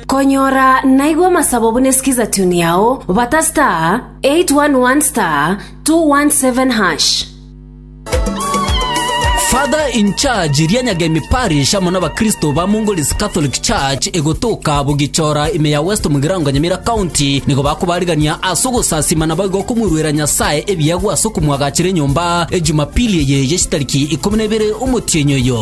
Konyora naigwe amasabo buna esikiza tune yao bata star 811 star 217 hash. Father in charge ria Nyagemi Parish amo n'abakristo ba Mongol's Catholic Church egotoka Bugichora ime ya West Mugirango Nyamira County nigo bakobarigania ase ogosasima naboigo okomoiruera Nyasae ebiegwa ase okomwagachera enyomba Ejumapili eye ye chitariki ikomi na ibere omotienyi oyo.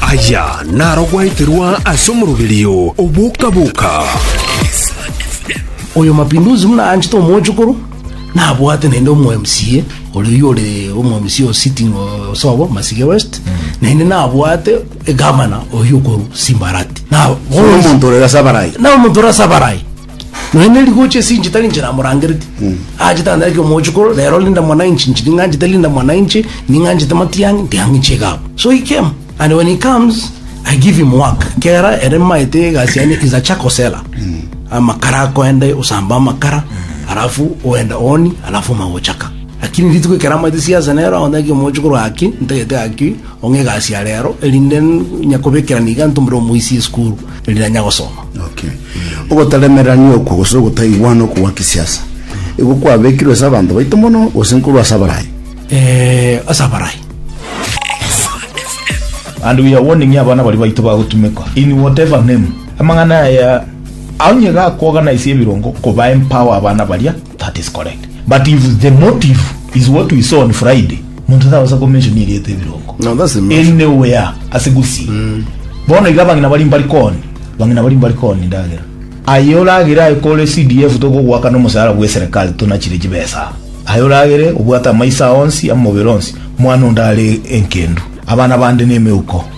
Aya narogweterwa ase omoroberio o boka-boka. Oyo Mapinduzi buna anchete omochokoro, nabwate naende omo MCA oria oyio ore omo MCA o sitting o Osobo, Masige West, naende nabwate egavana oyio okorwa Simbarati. Na bono- Omonto ore ase abarai. na omonto ore ase abarai Nonya ne rigochi ase inche tari inche namorangereti. Aachete ande ake omochukuru, rero linda mwananchi, inche ning'anchete linda mwananchi, ning'anchete matiang'i, ntiang'i inche iga abwo. So he came and when he comes I give him work. Kera ere maete egasi yane is a charcoal seller. Amakara akoende osambe amakara, alafu oende ooni, alafu omanye gochaka. Lakini rituko ekero amaete siasa nero aonde ake omochukuru gaki, ntagete gaki, ong'e egasi ya rero, erinde nyakobekerana iga ntumire omoisie esukuru. riria nyagosoma. Okay. Ogotaremerania okwo gose ogotaiwana okwo gwa kisiasa igo kwabekirwe ase abanto baito mono gose nkorwa ase abarayi? Eh, ase abarayi. And we are warning abana baria baito bagotumekwa in whatever name. Amang'ana aya onye gakogana ase ebirongo koba empower abana baria That is correct but if the motive is what we saw on Friday monto tagosa ko mention erieta ebirongo No, that's the mention. anywhere ase gusii mm. bono iga bang'ina bari mbari koni bang'ina bari mbari koni ndagera aye oragere aye kore CDF togogwakana omosaara bwe serikali tonachire chibesa aye oragere obwate amaisa onsi amobere onsi mwana onde are enkendu abana bande nemeuko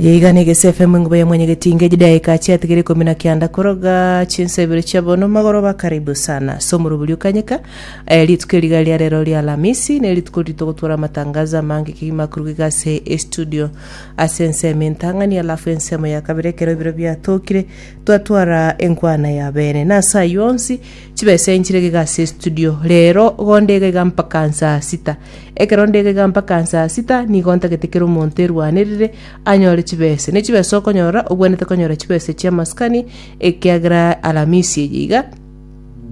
Eye iga nege CFM enguba ya mwenyegetinge chidaeka chiatigere ikomi na kianda koroga chinsa ibere chia bono magoroba karibu sana ase omorobori okanyeka eh, rituko eriga ria rero ria alamisi ne rituko riri togotwara amatangazo amange kegima akoruga iga ase estudio ase ensemo entang'ani alafu ensemo ya kabere ekero ibiro biatokire twatwara enkwana ya bene na ase ayio onsi Chibesa inche iga iga ase estudio, rero gonde iga iga mpaka nsaa sita. Ekero nde iga iga mpaka nsaa sita, nigo ntagete kera omonto erwanerire anyore chibesa. Ne chibesa okonyora, obwenerete konyora chibesa chia maskani, ekiagera Alamisi eye iga,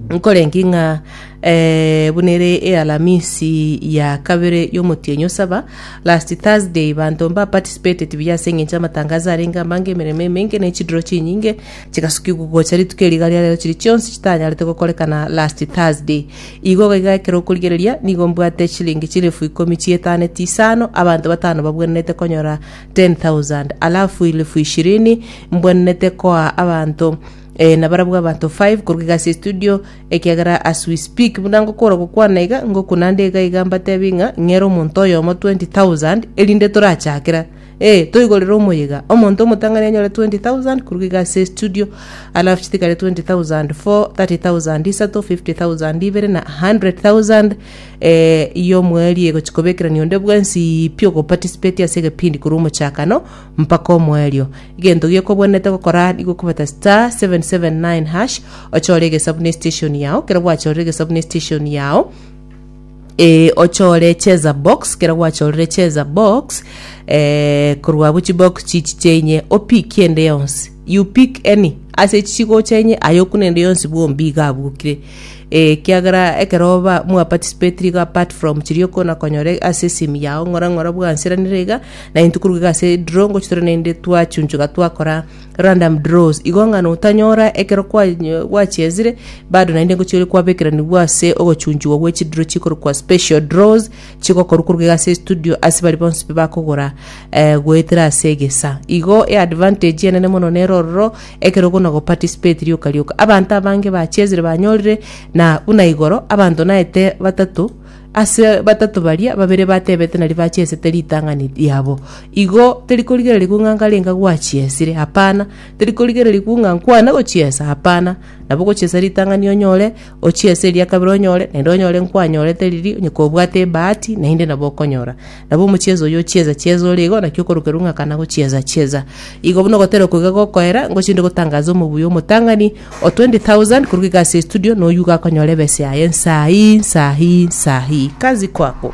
nkorengi ng'a eh, buna ere ealamisi ya kabere yomotienyi o saba, last Thursday, banto mba participated buya ase eng'encho y'amatangazo arenge amange, emeremo emenge, ne chidiro chinyinge, Chigasukigwa gocha rituko eri iga ria rero chiria chionsi chitanyarete gokorekana last Thursday. Igo iga iga ekero okorigereria nigo mbwate chilingi chilifu ikomi chietaaneti isano abanto batano babwenerete konyora 10,000 alafu ilifu ishirini mbwenerete koa abanto eh, na barabwo abanto 5 korwa iga ase estudio ekiagera as we speak buna ngokora gokwana iga ngokuna nde iga iga mbatebie ng'a ng'ere omonto oyomo 20,000 erinde torachakera Ee, toigorere omoyega. Omonto omotang'ani anyore 20,000 koruga iga ase estudio, alafu chitikare 20,000, 4, 30,000, isato, 50,000, ibere, na 100,000 eh, y'omoerio egochi kobekerania onde bwensi pi ogoparticipate ase egepindi korwa omochakano mpaka omoerio. Egento giokobwenerete gokora nigo okobeta star 779 hash ochore egesabu na estation yao, ekero gwachorire egesabu na estation yao, Ee ochore cheza box kero gwachorire cheza box eh, korwa abwo chibox chichi chenye opiki ende yonsi you pick any ase echi chigocha enye aye okuna ende yonsi bwombi iga abukire eh, kiagera ekero ba mwa participate iga apart from chiria okona konyora ase esimu yao ng'ora ng'ora bwanseranire iga nainto koruga iga ase draw ngochitore naende twachunchuga twakora Random draws, igo ng'a notanyora ekero kwanyo- gwachiezire bado naende ngochia ore kwabekeranigwa ase ogochunchigwa gwe chidiro chikorokwa special draws chigokorwa koruga iga ase estudio ase baria bonsi bakogora eh, goetera ase egesa. Igo eadvantage enene mono nere ororo ekero okona goparticipate rioka rioka. Abanto abange bachiezire banyorire na buna igoro abanto naete batato Ase batato baria, babere batebete na ribache esete ritang'ani riabo. Igo terikorigererigwa ng'a nkarenga gwachiesire, hapana, terikorigererigwa ng'a nkwane gochiesa, hapana, nabo gochiesa ritang'ani onyore, ochiese eria kabere onyore, naende onyore nkwanyorete riria, onye kobwate ebahati, naende nabo okonyora. Nabo omochieza oyio ochieza chieza ore igo, naki okorokerwa ng'a kana gochieza chieza. Igo buna ogotera okwo iga gokoera, ngochie inde gotangaza omobuya omotang'ani, o 20,000 korwa iga ase estudio, noyio igo akonyora ebesa yaye nsaa hii, nsaa hii, nsaa hii. Kazi kwako.